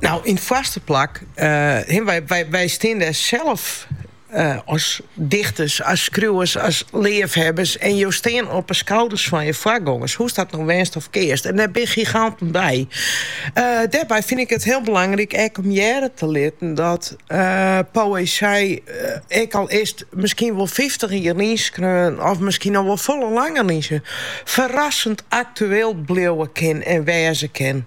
Nou, yn foarste plak, eh, wy, wy, wy stean dêr sels eh, as dichters, as skriuwers, as leafhebbers en jo stean op 'e skouders fan je foargongers, hoe'st dat no wendst of kearst. En dêr bin giganten by. Eh, dêrby fyn ik it hiel belangryk ek om hearre te litten dat eh, poëzij, eh, ek al is it miskien wol fyftich jier lyn skreaun of miskien al wol folle langer lyn skreaun, ferrassend aktueel bliuwe kin en wêze kin.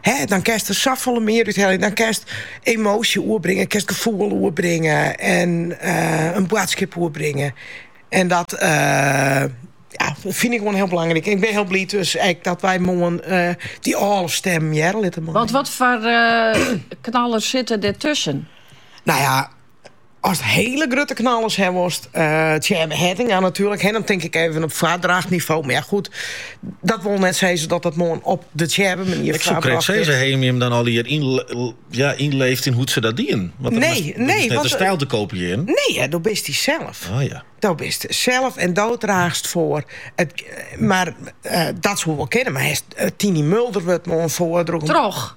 Hè, dan kinst der safolle mear út heljen. Dan kinst emoasje oerbringe, kinst gefoel oerbringe en eh, in boadskip oerbringe. En dat eh, ja, fyn ik gewoan hiel belangryk. En ik bin hiel bliid dus ek dat wy moarn eh, dy âlde stimmen hearre litte meie. Want wat foar eh, knallers sitte der tusken? No ja, Ast hiele grutte knallers ha wolst, Tsjêbbe Hettinga natuerlik, hè, dan tink ik even op foardrachtnivo, mar ja goed, dat wol net sizze dat dat moarn op de Tsjêbbe-manier foarbrocht wurdt. Ik soe krekt sizze, ha jimme jim dan allegear ynleefd yn hoe't se dat dienen? Want dat is net de styl te kopiearjen. Nee, ja, do bist dysels. Oh ja. Do bist sels en do draachst foar. Mar dat soe wol kinne, mar hast Tiny Mulder wurdt moarn foardroegen. Troch.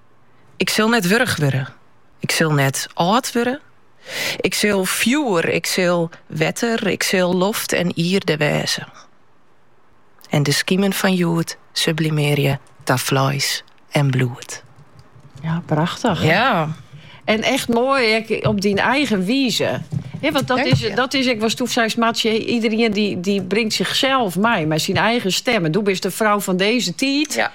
Ik sil net wurch wurde. Ik sil net âld wurde. Ik sil fjoer, ik sil wetter, ik sil loft en ierde wêze. En de skimen fan hjoed sublimearje ta fleis en bloed. Ja, prachtich. Ja. En echt moai ek op dyn eigen wize. Ja, want dat is, dat is ek watsto seist Martsje, iderien dy, dy bringt sichsels mei, mar syn eigen stim. En do bist de frou fan dizze tiid. Ja.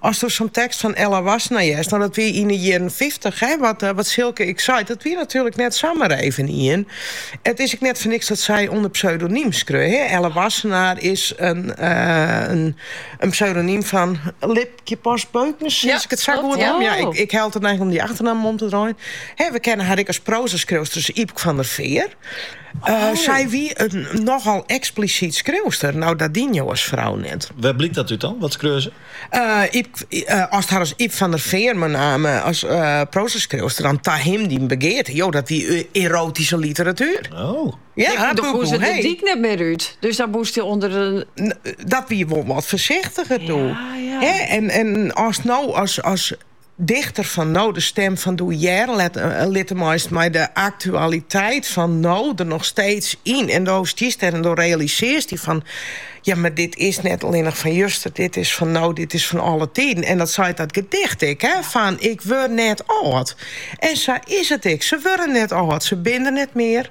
As do sa'n tekst fan Ella Wassenaer hearst, no dat wie yn 'e jierren fyftich, hè, wat Silke ek seit, dat wie natuerlik net samar even ien. It is ek net foar niks dat sy ûnder pseudonym skreau, hè. Ella Wassenaer is in pseudonym fan Lipkje Post-Beuckens, as ik it sa goed ha. Ja, ik hab de neiging om dy achternamme om te draaien. Hè, we kenne har ek as proazaskriuwster, as Ypk fan der Fear. Sy wie in nochal eksplisyt skriuwster. No, dat dien jo as frou net. Wêr blykt dat út dan? Wat skreau se? Ast har as Ypk fan der Fear mei namme as proazaskriuwster dan Ta him dyn begearte? Jo, dat wie erotyske literatuer. Oh. Ja, dan koe se de dyk net mear út. Dus dan moast ûnder de. Dat wie wol wat foarsichtiger doe. Ja, ja. En ast no as Dichter fan no, de stim fan doe hearre litte meist mei de aktualiteit fan no der noch steeds yn. En do stiest der en do realisearst dy fan, ja, mar dit is net allinnich fan juster, dit is fan no, dit is fan alle tiden. En dat seit dat gedicht ek, fan, ik wurd net âld. En sa is it ek, se wurde net âld, se binne der net mear.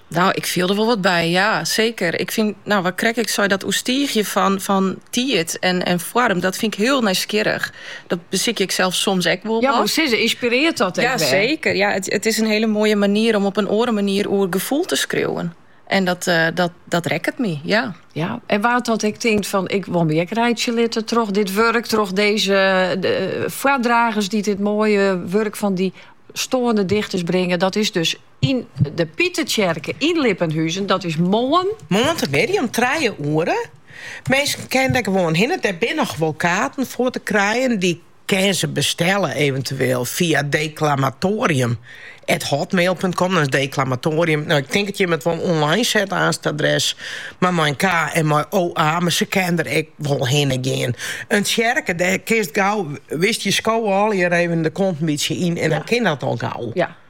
Nou, ik fiel der wol wat by, ja, seker. Ik fyn, nou, wat 'k krekt ek sei, dat oerstiigjen fan, fan tiid en, en foarm, dat fyn ik hiel nijsgjirrich. Dat besykje ik sels soms ek wol wat. Ja, wat sizze, ynspirearret dat ek wer? Ja, seker. Ja, it, it is in hele moaie manier om op in oare manier oer gefoel te skriuwen. En dat, eh, dat, dat rekket my, ja. Ja, en wa't dat ek tinkt fan, ik wol my ek reitsje litte troch dit wurk, troch deze eh, de, eh, foardragers dy't dit moaie wurk fan dy stoarne dichters bringe. Dat is dus Yn de Pitertsjerke yn Lippenhuzen, dat is moarn. Moarntemiddei om trije oere. Minsken kinne der gewoan hinne. Der binne noch wol kaarten foar te krijen. Dy kinne se bestelle eventueel fia deklamatoarium at hotmail punt com. Dan is deklamatoarium, no ik tink dat jimme it wol online set aanst it adres, mar mei in k en mei OA. Mar se kinne der ek wol hinne gean. In tsjerke, dêr kinst gau, witst, je skowe allegear even de kont in bytsje yn en dan kin dat al gau.